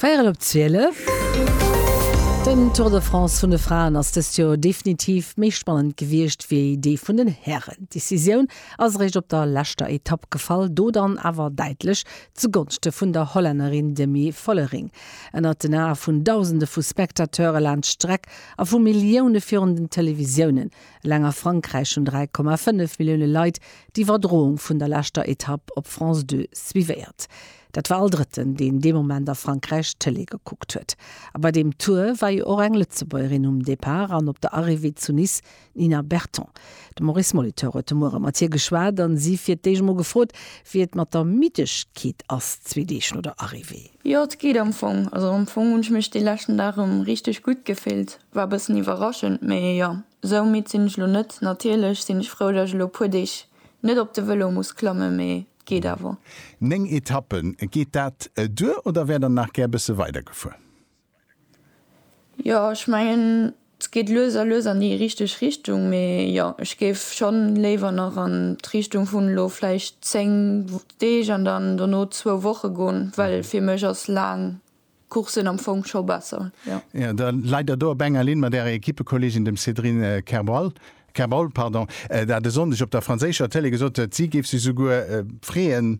Véierel op 12. Den Tour de France vun de Fraen ass dëst Joer definitiv méi spannend gewiescht wéi dee vun den Hären. D'Decisioun ass eréischt op der leschter Etapp gefall, do dann awer däitlech zu Gonschte vun der Hollännerin Demi Vollering. Ënnert den Ae vun Dausende vu Spectateure laanscht d'Streck a vu Millioune virun den Televisiounen Eleng a Frankräich hunn 3,5 Millioune Leit d'Iwwerdroung vun der leschter Etapp op France Deux suivéiert. Dat war all Drëtten, deen dee Moment a Frankräich d'Tëlee gekuckt huet. A bei deem Tour war jo och eng Lëtzebuergerin um Depart an op der Arrivée zu Nice, d'Nina Berton. De Maurice Molitor huet de Muere mat hir geschwat a si fir d'éischt emol gefrot, wéi et mat der Middegkeet ass, zwee Deeg no der Arrivée. Jo, et geet am Fong. Also am Fong hunn ech mech dee leschten Dag erëm richteg gutt gefillt. War bëssen iwwerraschend, mee jo, sou midd sinn ech lo net. Natierlech sinn ech frou, datt ech lo puer Deeg net op de Vëlo muss klammen, mee et geet awer. 9 Etappen, geet dat duer oder wär der nach gär bësse weider gefuer? Jo, ech mengen et geet lues a lues an déi richteg Richtung, mee jo, ech géif schonn léiwer nach an d'Richtung vun elo vläicht 10 Deeg an dann dono zwou Woche goen, well fir mech ass laang D'Course sinn am Fong scho besser, jo. Jo, da leit Der do op enger Linn mat Ärer Equippekolleegin, dem Sédrine Kerbal, Kerbal, pardon, dat e Sonndeg op der franséischer Tëlee gesot huet, si géif sech souguer freeën,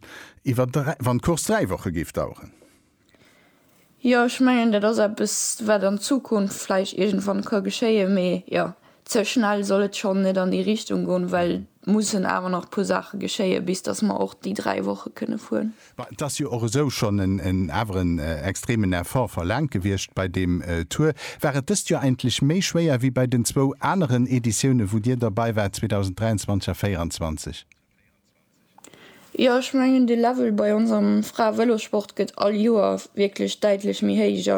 iwwer dräi, wann d'Course dräi Woche géif daueren. Jo, ech mengen, dat ass eppes, wat an Zukunft vläicht iergendwann ka geschéien, mee jo, Ze schnell soll et schonn net an déi Richtung goen, well et mussen awer nach e puer Saache geschéien, bis datt mer och déi dräi Woche kënne fueren. Bon, et ass jo och esou schonn en, awer en extremen Effort verlaangt gewiescht bei deem Tour. War et dëst Joer eigentlech méi schwéier wéi bei den zwou aneren Editiounen, wou Dir derbei waart, 2023 a 2024? Jo ech mengen de Level bei ons am Frae-Vëlossport gëtt all Joer wierklech däitlech méi héich a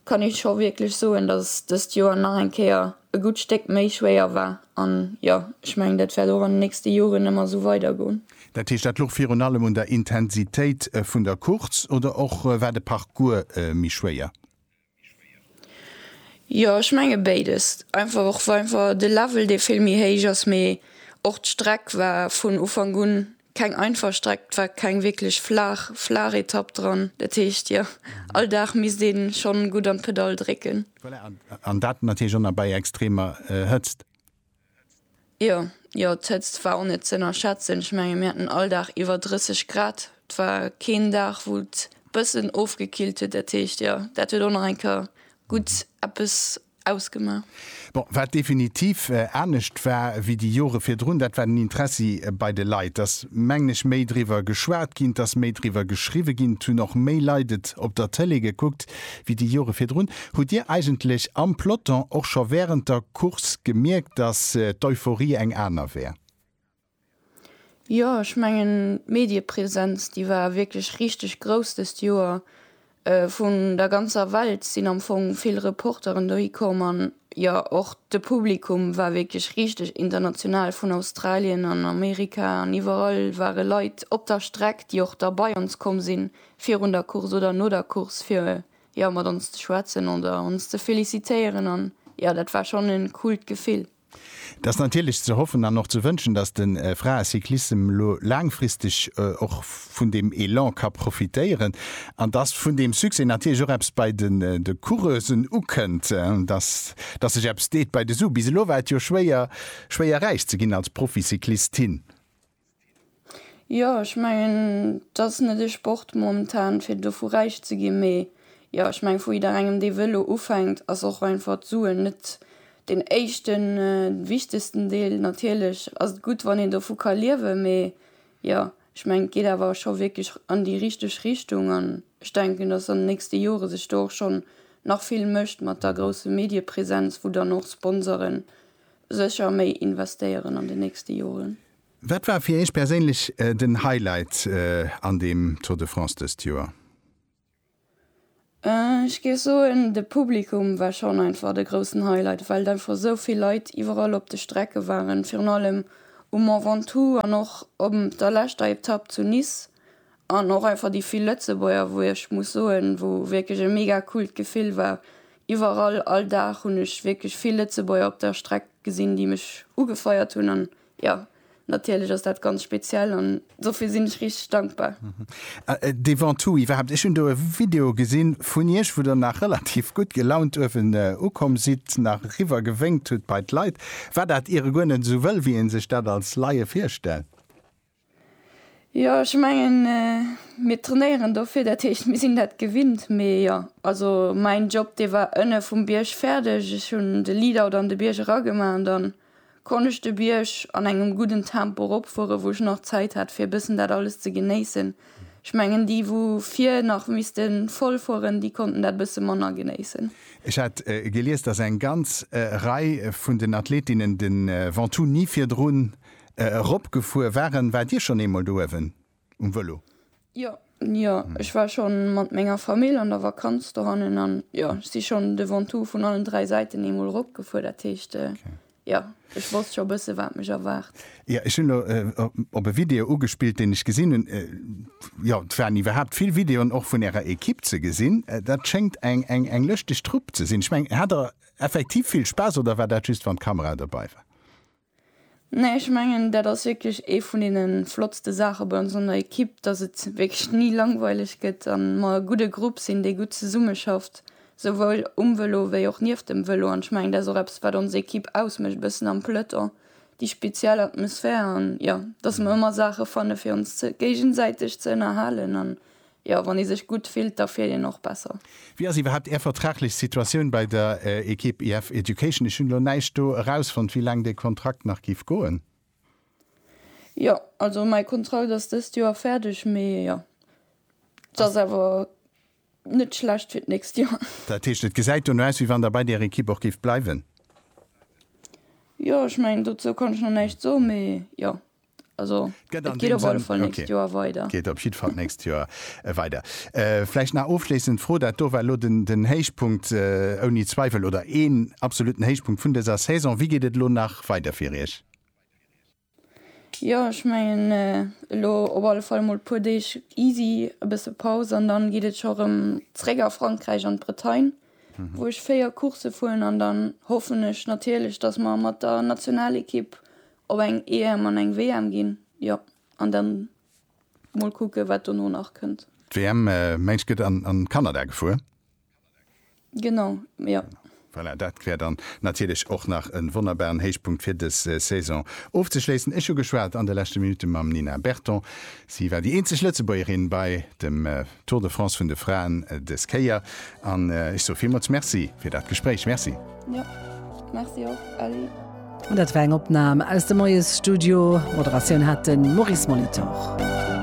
kann ee scho wierklech soen, datt dëst Joer nach eng Kéier e gutt Stéck méi schwéier war. An jo ech mengen dat wäert och an den nächste Joren ëmmer esou weider goen. Dat heescht dat louch virun allem un der Intensitéit vun der Course oder och war de Parcours méi schwéier? Jo ech menge béides einfach och wa einfach de Level dee vill méi héich ass, mee och d'Streck war vun Ufank un keng einfach Streck, et war keng wierklech flaach flaach Etapp dran, dat heescht jo all Dag misst ee schonn gutt an d'Pedall drécken. Voilà an dat natierlech och nach bei extremer Hëtzt. Jo, jo, d'Hëtzt war och net ze ënnerschätzen. Ech menge mir haten all Dag iwwer 30 Grad. Et war keen Dag, wou et bëssen ofgekillt huet. Dat heescht, jo, dat huet och nach eng Kéier gutt eppes ausgemaach. Bon, wat definitiv anescht war wéi déi Jore virdrun, dat war den Interessi bei de Leit. Et ass, mengen ech, méi driwwer geschwat ginn, et ass méi driwwer geschriwwe ginn, et hunn och méi Leit et op der Tëlee gekuckt wéi déi Jore virdrun. Hutt Dir eigentlech am Peloton och scho wärend der. Course gemierkt, datt d'Euphorie eng aner wär. Jo, ech mengen d'Mediepresenz déi war wierklech richteg grouss dëst Joer. Vun der ganzer Welt sinn am Fong vill Reporteren dohi komm an jo och de Publikum war wierklech richteg international, vun Australien an Amerika an iwwerall ware Leit op der Streck, déi och da bei ons komm sinn, virun der Course oder no der Course fir jo mat ons ze schwätzen oder ons ze felicitéieren an jo dat war schon en coolt Gefill. Et ass natierlech ze hoffen an och ze wënschen, dass de Fraecyclissem elo laangfristeg och vun deem Elan ka profitéieren an dass vun deem Succès natierlech och eppes bei de Coureusen ukënnt, dass dass sech eppes deet bei de Sue. Bis elo war et jo schwéier, schwéier räich ze ginn als Proficyclistin. Jo ech mengen dass net ee Sport momentan fir dovu räich ze ginn, mee jo ech meng vu jidderengem dee wëll elo ufänkt ass och einfach d'Suen net den éischten wichtegsten Deel. Natierlech ass et gutt wann een dovu ka liewe mee jo ech meng et geet awer scho wierklech an déi richteg Richtung an ech denken dass an de nächste Jore sech do och schonn nach vill mécht mat der grousse Mediepresenz wou dann och Sponsoren Sécher méi investéieren an den nächste Joren. Wat war fir Iech perséinlech den Highlight an dem Tour de France dëst Joer? Ech géif soen, de Publikum war schonn einfach de groussen Highlight, well einfach esou vill Leit iwwerall op de Strecke waren, virun allem um Mont Ventoux an och op der leschter Etapp zu Nice An och einfach déi vill Lëtzebuerger, wou ech muss soen, wou wierklech e mega coolt Gefill war. Iwwerall, all Dag hunn ech wierklech vill Lëtzebuerger op der Streck gesinn, déi mech ugefeiert hunn. An jo, natierlech ass dat ganz speziell an dofir sinn ech richteg dankbar. Devant tout, iwwerhaapt, ech hunn do e Video gesi vun Iech, wou Der nach relativ gutt gelaunt uewen ukomm sidd, nach eriwwer gewénkt hutt bei d'Leit. War dat iere guer net esou wëll, wéi ee sech dat als Laie virstellt? Jo ech mengen mir trainéieren dofir dat heescht mir sinn dat gewinnt. Mee jo also mäin Job dee war ënne vum Bierg fäerdeg. Ech hunn de Lead-out an de Bierg eragemaach an dann konnt ech de Bierg an engem gudden Tempo eropfuere wou ech nach Zäit hat fir e bëssen dat alles ze genéissen. Ech mengen déi wou vir nach misste voll fueren, déi konnten dat e bësse manner genéissen. Ech hat gelies, datt eng ganz Rei vun den Athletinnen de Ventoux ni virdrun Eropgefuer waren. Waart Dir schonn eemol do uewen um Vëlo? Jo, jo, ech war scho mat menger Famill an der Vakanz dohannen an jo, ech si schonn de Ventoux vun allen dräi Säiten eemol eropgefuer. Dat heescht, jo, ech wosst scho e bësse wat mech erwaart. Jo, ech hunn elo op e Video ugespillt, deen ech gesinn hunn. Jo, et waren iwwerhaapt vill Videoen och vun Ärer Ekipp ze gesinn. Dat schéngt eng lëschteg Trupp ze sinn. Ech mengen, hat Der effektiv vill Spaass oder war dat just wann d'Kamera dobei war? Nee, ech mengen dat ass wierklech ee vun deene flottste Saache bei ons an der Ekipp, datt et wierklech ni langweileg gëtt a mer e gudde Grupp sinn, dee gutt zesummeschafft, souwuel um Vëlo wéi och nieft dem Vëlo. An ech mengen dat ass och eppes wat ons Ekipp ausmécht e bëssen am Peloton, déi speziell Atmosphär an jo, datt mer ëmmer Saache fanne fir ons géigesäiteg ze ënnerhalen an Jo, wann ee sech gutt fillt, da fiert een och besser. Wéi ass iwwerhaapt Är vertraglech Situatioun bei der Ekipp IF Education? Ech hunn elo näischt do erausfonnt, wéi laang de Kontrakt nach géif goen. Jo, also mäi Kontrakt ass dëst Joer fäerdeg, mee jo, et ass awer net schlecht fir d'nächst Joer. Dat heescht, et gesäit dono aus, wéi wann Der bei där Ekipp och géift bleiwen? Jo, ech mengen, dozou kann ech nach näischt soen, mee jo. Also, et geet op alle Fall d'nächst Joer weider. Geet op jidd Fall d'nächst Joer weider. Vläicht nach ofschléissend Fro, dat do war elo den Héichpunkt ouni Zweiwel oder een absoluten Héichpunkt vun dëser Saison. Wéi geet et elo nach weider fir Iech? Jo, ech mengen, elo op alle Fall emol e puer Deeg easy, e bësse Paus an dann geet et scho erëm zréck a Frankräich an d'Bretagne, wou ech 4 Coursse fueren an dann hoffen ech natierlech, dass mer mat der Nationalekipp op eng EM an eng WM ginn, jo, an dann mol kucke wat dono nach kënnt. D'WM, mengs gëtt an Kanada gefuer? Genau, jo. Voilà, dat wär dann natierlech och nach en wonnerbaren Héichpunkt fir des Saison ofzeschléissen. Ech hu geschwat an de leschte Minutte mam Nina Berton, si war déi eenzeg Lëtzebuergerin bei dem. Tour de France vun de Fraen des Kéier an ech soe villmools Merci fir dat Gespréich. Merci. Jo, Merci och, Elli. Dat war eng Opnam aus dem Moiesstudio. Moderatioun hat de Maurice Molitor.